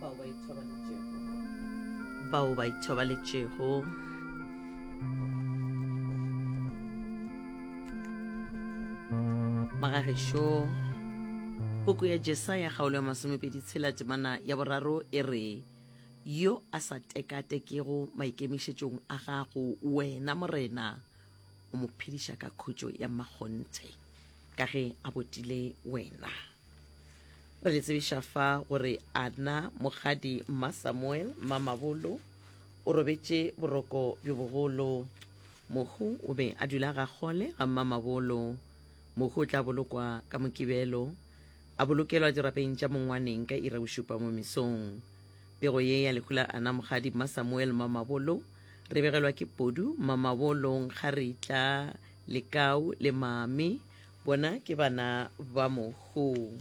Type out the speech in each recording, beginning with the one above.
bao ba ithobaletšego bao ba ithobaletšego magagešo puku ya jesaya kgaolo ya masomepedi tshela temana ya boraro e re yo a sa tekatekego maikemišetšong a gago wena morena o mo phediša ka khutšo ya mmakgonthe ka ge a botile wena re le tsebiša fa gore ana mogadi mma samuel mma mabolo o robetše boroko bjo bogolo mohu o be a dula ga kgole ga mma mabolo mohu o tla bolokwa ka mokibelo a bolokelwa dirapeng tša mongwaneng ka ira bošupa mo mesong pego ye ya lehu la ana mogadi mma samuel mma mabolo re begelwa ke podu mma mabolo nkga re tla lekau le mame Bona ke bana ba mohu.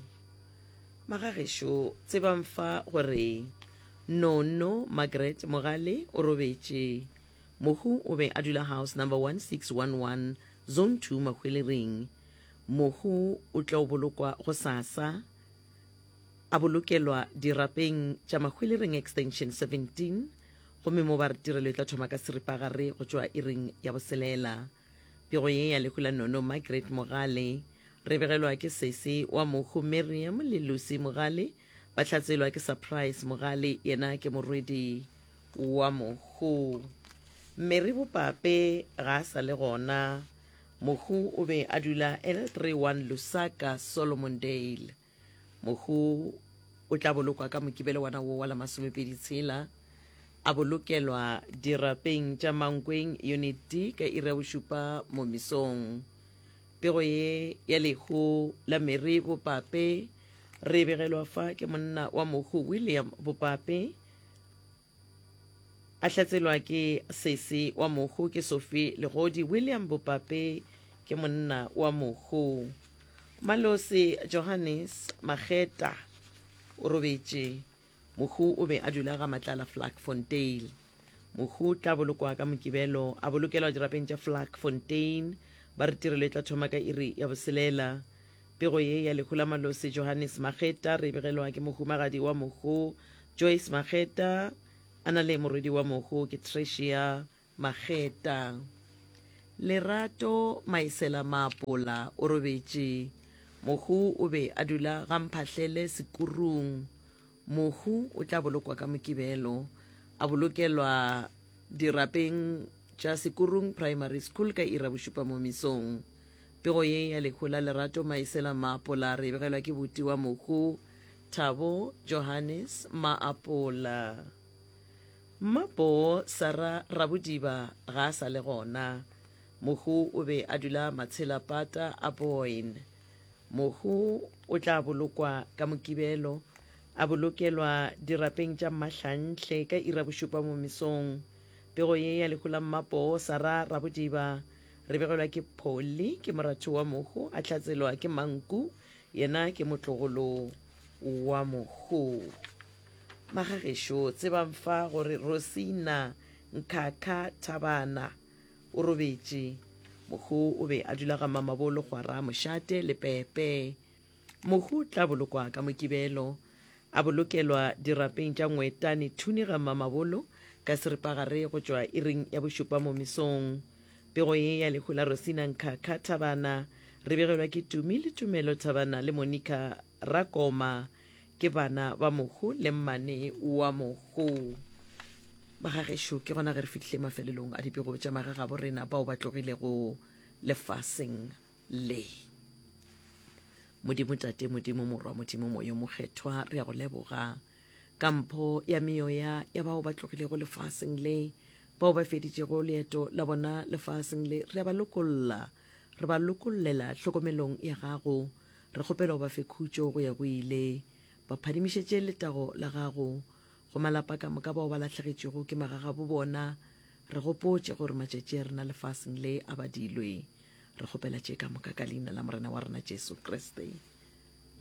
Magagešo, tsebang fa gore Nono Margaret Mogale o robetše. Mohu o be a dula house number 1611, zone 2 Mahwelering. Mohu o tlo bolokwa gosasa, a bolokelwa dirapeng tša Mahwelering extension 17, gomme mo ba re tirelo e tla thoma ka seripagare go tšwa iring ya boselela. Pego ye ya lehu la Nono Margaret Mogale, re begelwa ke sesi wa mohu Miriam le Lucy Mogale, ba hlatselwa ke Surprise Mogale, yena ke morwedi wa mohu. Mary Bopape ga a sa le gona, mohu o be a dula L31 Lusaka, Solomondale. Mohu o tla bolokwa ka Mokibelo wa na wo wa la masomepedi tshela, a bolokelwa dirapeng tša Mankweng Unit D ka iri ya bošupa mo misong. Pego ye ya lehu la Mary Bopape re e begelwa fa ke monna wa mohu William Bopape, A hlatselwa ke sesi wa mohu ke Sofi Legodi William Bopape ke monna wa mohu Malosi Johannes Mageta o robetše Mohu o be a dula ga Matlala Vlakfontein Mohu tla bolokwa ka Mokibelo a bolokelwa dirapeng tša Vlakfontein ba re tirelo e tla thoma ka iri ya boselela Pego ye ya lehu la Malosi Johannes Mageta re begelwa ke mohumagadi wa mohu Joyce Mageta a na le morwedi wa mohu ke Tricia Mageta. Lerato Maesela Maapola o robetše. Mohu o be a dula ga Mphahlele Sekurung. Mohu o tla bolokwa ka Mokibelo, a bolokelwa dirapeng tša Sekurung Primary School ka iri ya bošupa mo mesong. Pego ye ya lehu la Lerato Maesela Maapola re e begelwa ke boti wa mohu, Thabo Johannes Maapola. Mmaboo Sara Rabodiba ga a sa le gona. Mohu o be a dula Matshelapata a Boyne. Mohu o tla bolokwa ka Mokibelo, a bolokelwa dirapeng tša Mmahlanhle ka ira bošupa mo mesong. Pego ye ya lehu la mmapoo Sara Rabodiba re begelwa ke Polly, ke moratho wa mohu, a hlatselwa ke Manku, yena ke motlogolo wa mohu. Magagešo tsebang fa gore Rosina Nkhakha Thabana O robetše. Mohu o be a dula ga mamabolo gwara mošate le pepe. Mohu tla bolokwa ka mokibelo. A bolokelwa dirapeng tša ngwetane thuni ga mamabolo ka seripagare go tšwa iring ya bošupa mo mesong. Pego ye ya lehu la Rosina Nkhakha Thabana re begelwa ke Tumi le Tumelo Thabana le Monica Rakoma. ke bana ba mohu le mmane wa mohu bagagešo ke gona ge re fihlile mafelelong a dipego tša magagabo rena bao ba tlogilego lefaseng le modimo tate modimo morwa modimo moyo mokgethwa re ya go leboga ka mpho ya meoya ya bao ba tlogilego lefaseng le bao ba feditšego leeto la bona lefaseng le re a ba lokolla re ba lokollela tlhokomelong ya gago Re kgopela o ba fe khutšo go ya go ile. Ba phadimišetše letago la gago go malapa ka moka bao ba lahlegetšwego ke magagabo bona. Re gopotše gore matšatši a rena lefaseng le a badilwe. Re kgopela tše ka moka ka Leina la Morena wa rena Jesu Kriste.